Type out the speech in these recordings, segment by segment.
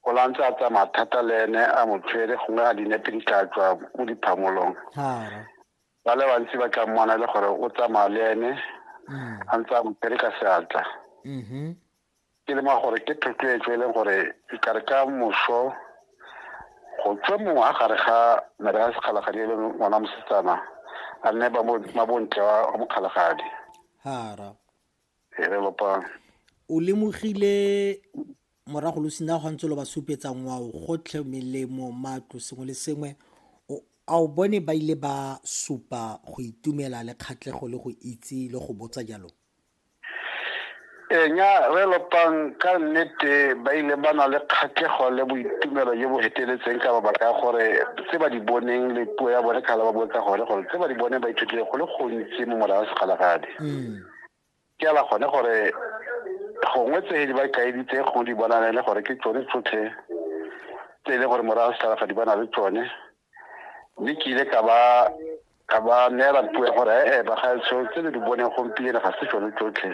o la ntse a tsamaya thata le ene a mo tshwere gongwe a dinepe di tla tswa mo diphamolong ba le bantsi ba tla mmona le gore o tsamaya le ene mm. a ntse a mo tshwere ka seatla mm-hmm. ke lema gore ke thotloetso e leng gore e kare ka moso go tswe mongwe a gare ga mere ya sekgalagadi e le ngwana mosetsana a nne mabontle wa mokgalagadi o lemogile morago lo sina go ntse lo ba supetsa ngwao gotlhe melemo matlo sengwe le sengwe a o bone ba ile ba supa go itumela le kgatlego le go itse le go botsa jalo enya re lopang ka nnete ba ile ba na le kgatlego le boitumelo jo bo feteletseng ka mabaka a gore tse ba di boneng le puo ya bone kgale ba botsa gone gore tse ba di bone ba ithutile go le gontsi mo morago segalagadi mm. ke ala gone gore gongwe tse di ba kaeditse go di bonane le gore ke tsone tsotlhe tse e leng gore morago setlhalafa di bana le tsone mme ke ile ka ba ka ba neela puo ya gore ee bagaetsho tse le di boneng gompieno ga se tsone tsotlhe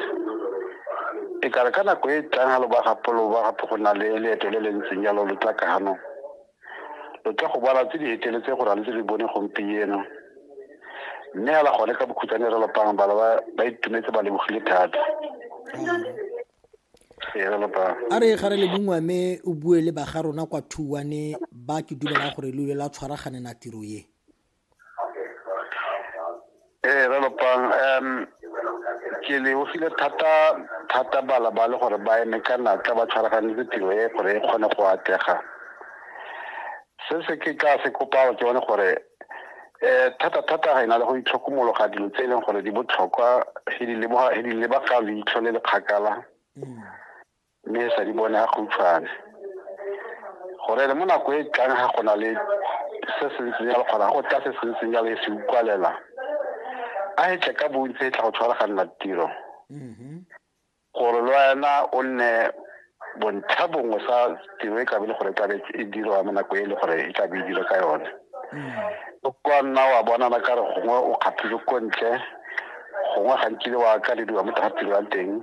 e kare ka nako e tlang ga lo ba gapo lo ba gapo go na le leeto le le ntseng jalo lo tla ka ganong Lo tla go bona tse di heteletse go na le tse le bone gompieno. Mme hela gone ka bokhutsane re lopang bana ba ba itumetse ba lebogile thata. Ee, re lopang. a re ga re le bongwe mme o bue le baga rona kwa thuwane ba ke dumelang gore lo ile la tshwaraganela tiro ye ee re lopang um ke lebogile thata thata bala ba le gore ba eme ka natla ba tshwaraganetse tiro e gore e kgone go atlega se se ke tla se kopao ke bone gore um thata thata ga e na le go itlhokomologa dilo tse e leng gore di botlhokwa he di lebagalo leitlho le le kgakala mm. mme e sa di bone a khutshwane gore le mo nako e tlang ga go na le se se ntseng jalo kgona go tla se se ntseng jalo e se ukwalela a e tle ka bontsi e tla go tshwaraganela tiro mm-hmm. gore le wena o nne bontlha bongwe sa tiro e kabe le gore e tlabe e dirwa mo nako e le gore e tlabe e dira ka yone mm-hmm. o kwa nna wa bonana ka re gongwe o kgathile ko ntle gongwe gantsi le wa ka le diwa mo tsa tiro ya teng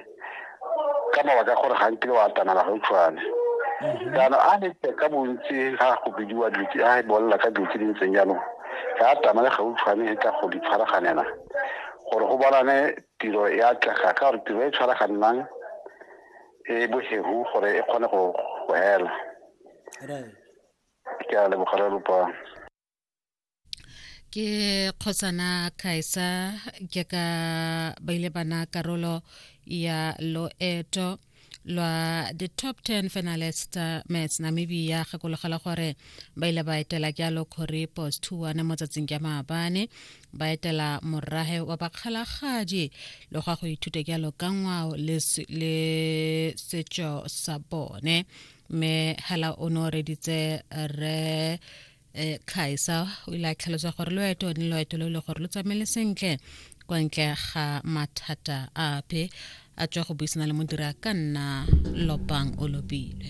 ka mabaka gore ga nkile wa atamela gautshwane mhm. jaanong a nete ka bontsi ga go bidiwa dilo a e bolela ka dilo tse di ntseng jaanong ga atamele gautshwane e ka go di tshwaraganela gore go bonane tiro e atlega ka gore tiro e tshwaraganang e bohegu gore e kgone go hela ke a lebogela lopang ke kgosana kaisa ke ka ba ile bana karolo ya loeto lwa the top 10 finalist uh, mats namibia gakologela gore ba ile ba etela jalo kgore post 2 mo tsatsing ja maabane ba etela morrahe wa bakgalagaji le gwa go ithuta jalo ka ngwao le setšo sa bone mme hela o ne o reditse re um tlhaisa o ile a tlhalosa gore loeto ne loeto lo le gore lo tsamaele sentle kwa ntle ga mathata ape a tswa go buisana le modira ka nna lopang o lopile